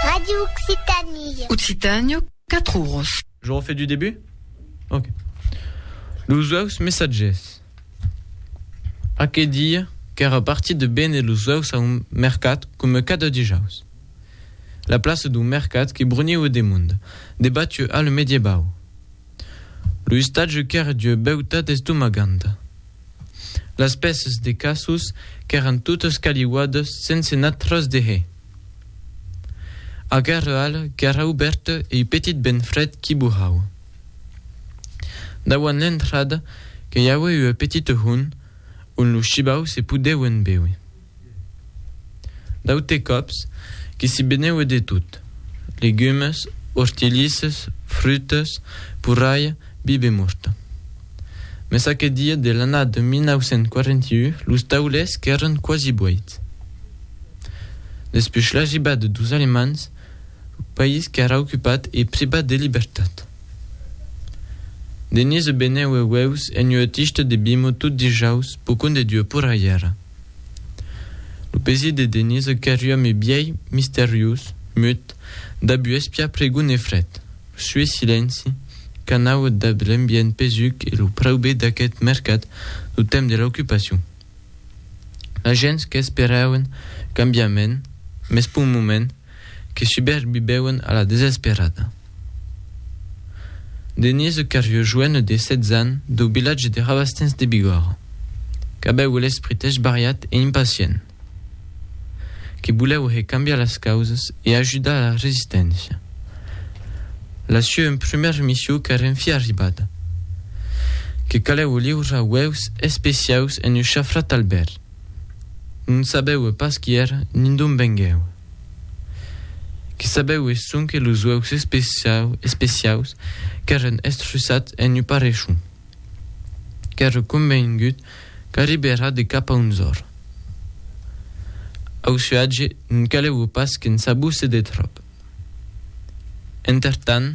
Radio Occitanie. Occitània, 4 oros. Je refais du début Ok. Los uèus messatgers. Aquel dia, qu'èra partit de béner los uèus a un mercat coma cada dijaus. La plaça d'un mercat que bruniue de monde, debattue al mediebau. Lo istatge qu'èra d'ua beutat estomaganta. Las pèças de cassos qu'èran totas caliuadas sense nat tras de hè. Aquera ala qu'èra obèrta e ua petit vent frèd qu'i burrava. Dauant l'entrada que i aué ua petita hon on los shibaus se podeuen béuer. D'aute còps, que s'i beneue de tot, legumes, hortilisses, frutas, porralha, bibe morta. Mès aqueth dia de l'annada 1941 los taulers qu'èran quasi boits. Despuish l'arribada dos Alemands, lo país qu'èra ocupat e privat de libertat. Denise beneue ueus en ua tista de bimo tot dijaus, pocon de Dieu porralhèra. Lo pesier de Denise qu'èri ome bièi, misteriós, mut, dab uespia pregon e fret. Lo sué silenci, qu'anau dab l'ambient pesuc e lo praube d'aqueth mercat lo temps de l'aucupacion. La gents qu'esperauen cambiament, mès p'un moment, que subèrbibèuen a la desesperada. Denise Cariou joène de 16 ans dau vilatge de Rabastens de Bigòrra, qu'avèu l'esprit esbariat e impacient, que volèu hè cambiar las causas e ajudar la resisténcia. La sua un prumèra missiu qu'èra en fi arribada, que calèu liurar uèus especiaus en un chafrat al bèr, Non sabeue pas qui èr nin d'on venguèu. Que sabeue sonque los uèus especiaus qu'èren estruçats en un parrechon. Qu'ère convengut qu'arribèra de cap a onzòr. Au suatge non caleue pas que'n sabusse de tròp. Entertant,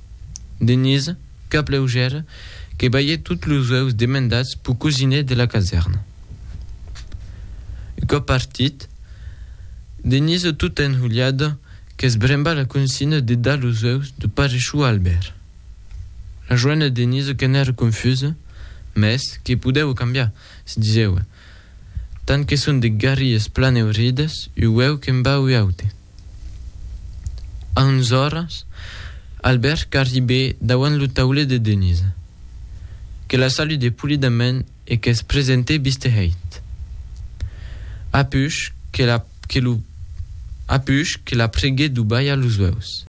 Denise, cap leugèr, que balhèt tots los uèus demandats pau cosiner de la casèrna. Un còp partit, Denise tota enhulhada qu'esbremba la consigna de dar los uèus de parechou a Albèrt. La joena Denise qu'en èra confusa, mès que podèva cambiar, se disewa, Tant que son de garries plan eurides, ueu que'n va ua aute. A onze oras, Albèrt qu'arribè dauant lo taulet de Denisa, que la saludè polidament e que's presentè bistehèit. Apuish que la que lo apuish que la preguè d'o balhar los ueus.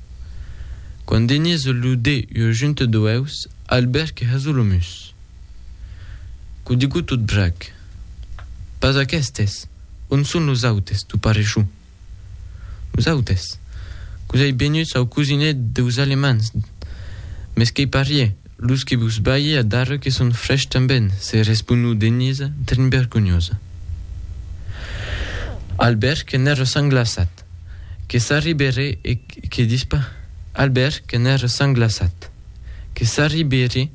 Quand Denisa lo dè ua junta d'ueus, Albèrt que hasó lo mus. Qu'o digo tot brag. Pas aquestes! On son los autes, tu parecho? Los autes? Quos ei benuts au cosinet deus Alemands. Mes qu'ei parié, los que vos balhe a darreu que son frèchs tanben, se responou Denisa, trinbergonhosa. Albert que n'èra sanglaçat. Que s'arribèré e que dispa Albèrt que n'ère sanglaçat. Que s'arribèré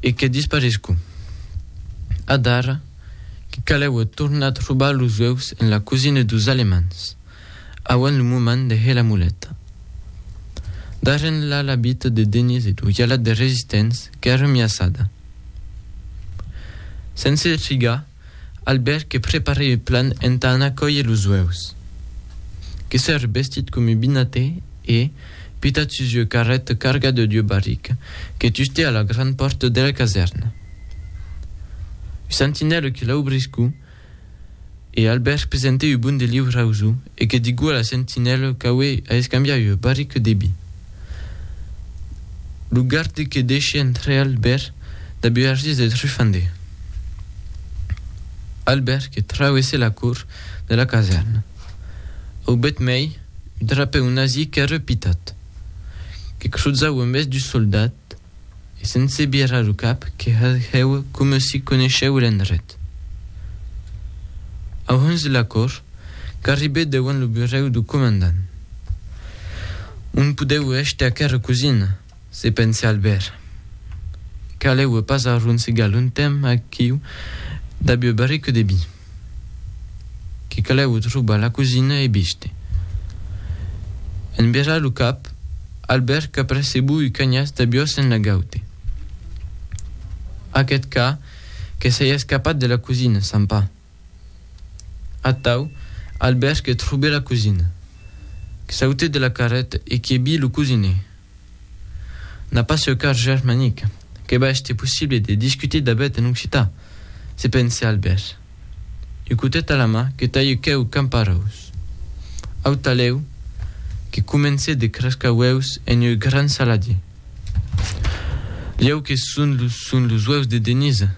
e que disparescu. Adara que caleue tornar trobar los ueus en la cosina dos Alemands, auent lo moment de hèr la muleta. Darren la labita de Denís e d'Oialat de Resistents qu'ère miaçada. Sense trigar, Albèrt que preparè ua plan entà anar còier los uèus. Que s'ère bestit com ua binatè e, pitat sus ua carreta cargada d'ua barrica, que tustè a la gran pòrta de la casèrna. Ua sentinèla que l'aubriscú e Albèrt presentè ua bon de liu rausu e que digú a la sentinèla qu'aué a escambiar ua barrica de bi. Lo garde que deishè entrar Albèrt da buergis de Trufandé. Albèrt que trauesse la cour de la casèrna, aubèt mei un trapèu nazi qu'ère pitat, que cruzau en bes du soldat e sense birar lo cap que hèu coma si coneishèu l'endret. Au hons de la cour, qu'arribè deuant lo burèu du comandant. On podèu hèstre aquera cosina! Se pense al ver. Calèu passar un sigal un temps aquiu dab ua barrica de vi. Que calèu trobar la cosina e biste. En virar lo cap, al ver qu'apercebou ua canhas d'abiós en la gaute. Aqueth ca que s'ei escapat de la cosina, sant Pà! Atau, Albèrt que trobe la cosina, que saute de la carreta e que bi lo cosine. N'a pas seu car germanic, que va èster possible de discuter dabèt en occitan, se pense Albèrt. Un cotet a la man que talhe queu camparòus. Au talèu, que comence de crascar uèus en ieu gran saladier. Lhèu que son los uèus de Denisa.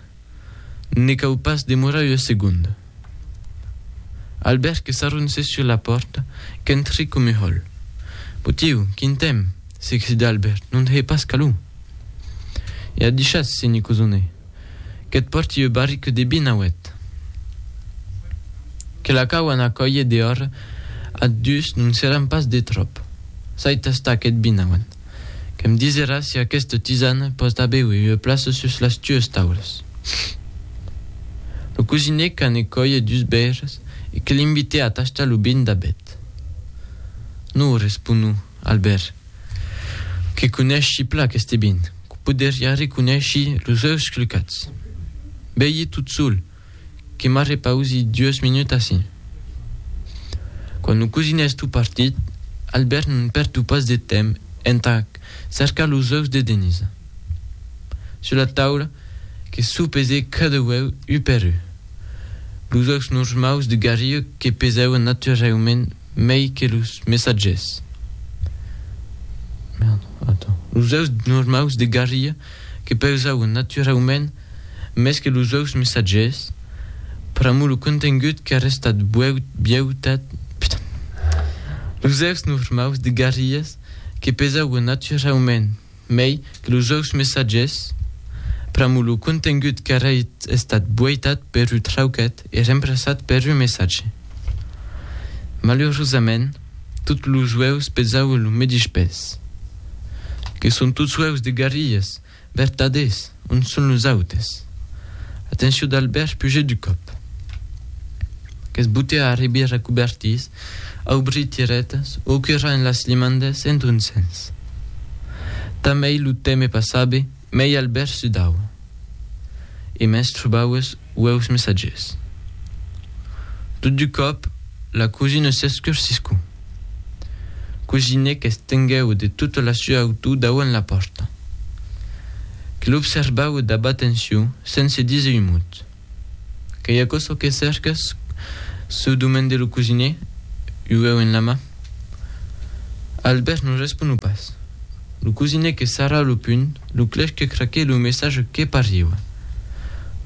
Ne cau pas demorar ua segonda. Albèrt que s'arronsèt sus la pòrta, qu'entrèc coma hòl. Potieu, quin temps! s'excitèt Albèrt, non hèi pas calor? E a dichatz, se n'i cosonè, qu'eth pòrti ua barrica de vin auèt. Que la cau anar còier dehòra ath dus non seràn pas de tròp. S'ai tastat aquest vin auant. Que me disera si aqueste tisane pòt aver ua plaça sus las tues taules. Lo cosinèc a ne còie dus bèires e que l'invitè a tachtar lo bin d'abet. Non, responou Albèrt, que coneischi plan aqueste bin, que poderia reconeishir los ueus clucats. Bèi tot sol! que m'arrepausi dues minuts ací. Quand lo cosin es tot partit, Albèrt non pèrdu pas de temps entà cercar los ueus de Denisa. Sus la taula, que s'o pese cada ueu u per u. Los ueus normaus de garriu que pesavan naturaument mei que los messatgers. Los ueus normaus de garriu que pesavan naturaument mès que los auts messatges, pr'amor lo contengut qu'es restat biautat, los auts normaus de Garrigues que pesauen naturaument mei que los auts messatges, pr'amor lo contengut qu'es estat buaitat per un trauquet e remplaçat per un messatge. Malurosament, tots los auts pesauen lo medish pes. Que son tots auts de Garrigues? Vertadés, on son los autes? Atencion d'Albèrt pugèt du còp. Qu'es botè a arribir recoubertís, aubrir tiretas, o quirrar en las limandes en ton sens. Tanmei lo teme passabe, mei Albèrt sudaue. E mès trobaues ueus messatges. Tot du còp, la cosina s'escursiscu. Cosine qu'estenguèu de tota la sua autor dauant la pòrta. Que l'observau dab atencion sense díser un mot. Qu'ei aquò çò que cerques? se demandè lo cosine, ueu en la man. Albèrt non responu pas. Lo cosine que sarra lo punh, lo clèch que craque lo message que pariua.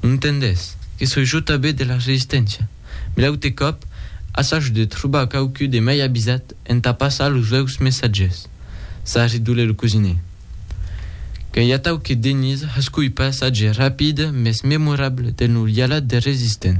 Non tendètz, que soi jo tabé de la Resisténcia, me l'aute còp assage de trobar quauqui de mai avisat entà passar los veus messatges, s'a redolé lo cosine. Qu'a i atau que Denise hascoi passatge rapide mes memorable del norialat de resistent.